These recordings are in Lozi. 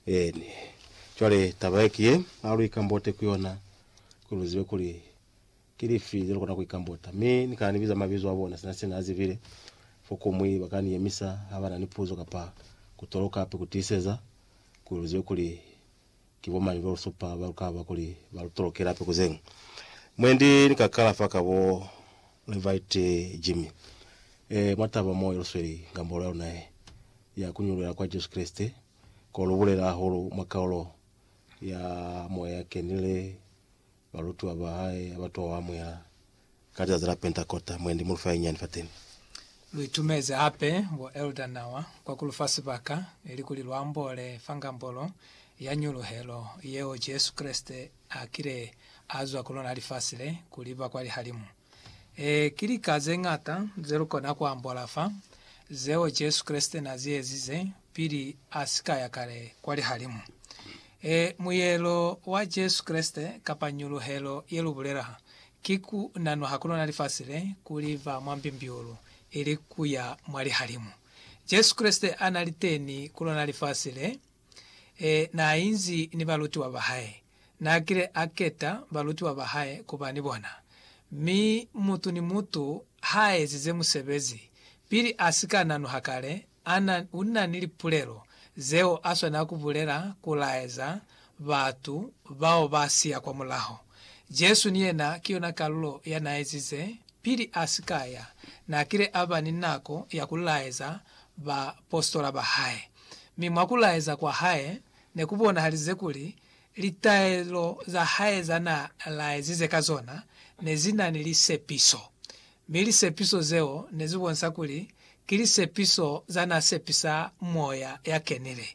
Eeni. Cwale, taba ye ki ye, ha lu ikambote ku yona, kuli lu zibe kuli ki lifi ze lu kona ku ikambota. Mi Ni kana ni biza mabizo a bona, sina se Na zibile. Fokomwi ba ka ni yemisa ha ba na ni puzo kapa ku toloka hape ku tiiseza, kuli lu zibe kuli ki bo mañi ba lu supa ba lu ka ba kuli ba lu tolokela hape ku zeñwi. Mwendi ni ka kala fa ka bo Levite Jimmy. E, mwa taba mo ye lu sweli ngambolo ya luna ye ya ku ñuluela kwa Jesu Kreste, ko lu bulela hahulu mwa kaulo ya Moya ya Kenile, balutiwa ba hae ha ba to amuhela ka lizazi la Pentakota, mwendi mu lu fa ye nyani fateni. Lu itumezi hape bo Elder Nawa kwa ku lu fa sibaka, ilikuli lu ambole fa ngambolo ya ñuluhelo yeo Jesu Kreste A kile a zwa ku lona lifasi le, ku liba kwa lihalimu. Ee, ki lika ze ñata ze lu kona ku ambola fa, zeo Jesu Kreste na zi ezize pili a si ka ya kale kwa lihalimu. Ee, muyelo wa Jesu Kreste, kapa ñuluhelo ye lu bulela ha, ki ku nanwa ha ku lona lifasi le, ku liba mwa mbimbiulu, ili ku ya mwa lihalimu. Jesu Kreste a na li teni ku lona lifasi le. naainzi ni balutiwa bahae. Naakile aketa balutiwa bahae kuba ni bona. Mi mutu ni mutu haaezize musebezi, pili asika nanuha kale, ana, una ni lipulelo zeo aswanela kubulela kulaeza batu bao baasiya kwa mulaho. Jesu ni yena ki yona kalulo ya naaezize, pili asika ya, naakile aba ni nako ya kulaeza baapositola bahae. mi mwa ku laeza kwa hae ne ku bonahalize kuli litaelo za hae za na laezize ka zona ne zi na ni lisepiso, mi lisepiso zeo ne zi bonisa kuli ki lisepiso za na sepisa Moya ya Kenile,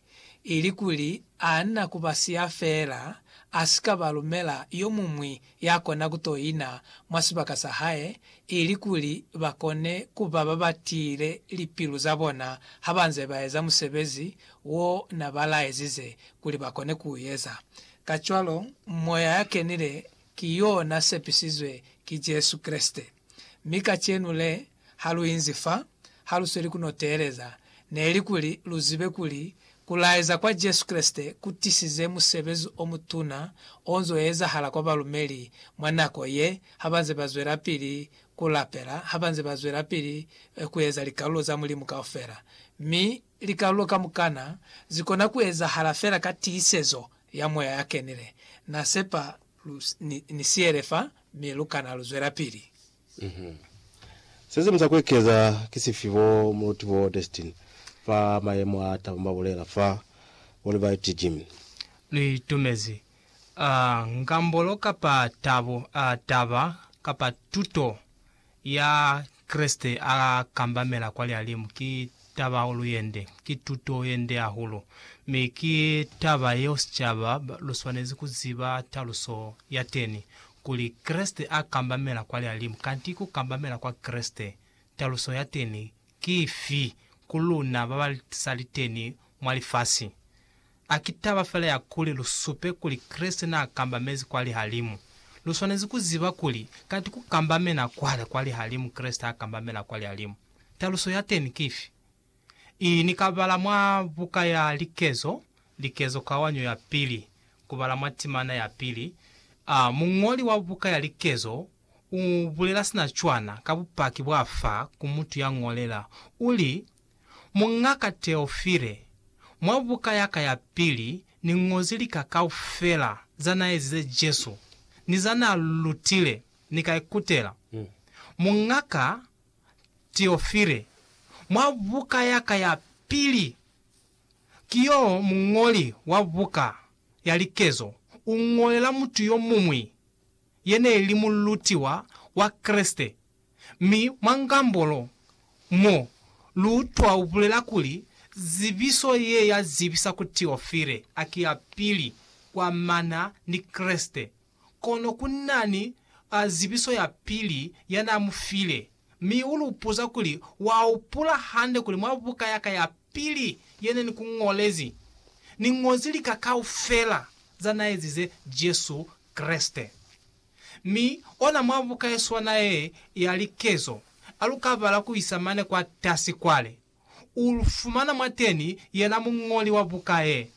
ili kuli a na ku ba siya feela, a si ka ba lumela yo muñwi ya kona ku to ina mwa sibaka sa hae, ilikuli ba kone ku ba ba ba tiile lipilu za bona ha ba nze ba eza musebezi wo na ba laezize kuli ba kone ku u eza. Kacwalo, Moya ya Kenile ki yo na sepisizwe ki Jesu Kreste. Mi kacenu le, ha lu inzi fa, ha lu sweli ku no teeleza, neli kuli lu zibe kuli ku laeza kwa Jesu Kreste ku tisize musebezi o mutuna o nz'o ezahala kwa balumeli mwa nako ye, ha ba nze ba zwelapili ku lapela, ha ba nze ba zwelapili ku eza likalulo za Mulimu kaufela, mi Likalulo kamukana zikona kuezahala fela ka tiisezo ya Moya ya Kenile. Na sepa lu ni siyele fa, mi lu kana lu zwelapili. Uhum. Sesiñwi sa kuekeza ki sifi bo Muluti bo Destin fa mayemo a tabo ba bulela fa World Variety Gym? Lu itumezi a ngambolo kapa tabo, a taba kapa tuto ya Kreste a kambamela kwa Lialimu ki tabahulu yende, ki tuto yende hahulu, mi ki taba yeo sicaba lu swanezi ku ziba taluso ya teni, kuli, Kreste a kambamela kwa Lialimu. Kanti ku kambamela kwa Kreste, taluso ya teni ki ifi ku luna ba ba sa li teni mwa lifasi? A ki taba fela ya kuli lu supe kuli Kreste naa kambamezi kwa lihalimu. Lu swanezi ku ziba kuli kanti ku kambamena kwale kwa lihalimu Kreste ha kambamela kwa lihalimu. Taluso ya teni ki ifi? I ni ka bala mwa buka ya Likezo, Likezo Kawanyo ya Pili, ku bala mwa timana ya pili. A Muñoli wa buka ya Likezo u bulela sina cwana ka bupaki bwa fa ku mutu ya ñolela, u li, Muñ'aka Teofile, mwa buka yaka ya pili ni ñozi lika kaufela za na ezize Jesu ni za na lutile, ni ka ikutela. Muñ'aka Teofile, mwa buka yaka ya pili, ki yo muñoli wa buka ya likezo, u ñolela mutu yo muñwi ye ne li mulutiwa wa Kreste. Mi mwa ngambo lo, mo, lu utwa u bulela kuli, Zibiso ye ya zibisa ku Teofile a ki ya pili kwa mana ni Kreste, kono ku na ni a zibiso ya pili ya na mu file. Mi u lu puza kuli, Wa upula hande kuli mwa buka ya ka ya pili ye ne ni ku ñolezi, ni ñozi lika kaufela za na ezize Jesu Kreste? Mi ona mwa buka ye swana ye ya likezo, a lu ka bala ku isa mane kwa tasi kwale, u lu fumana mwateni yena muñoli wa buka ye,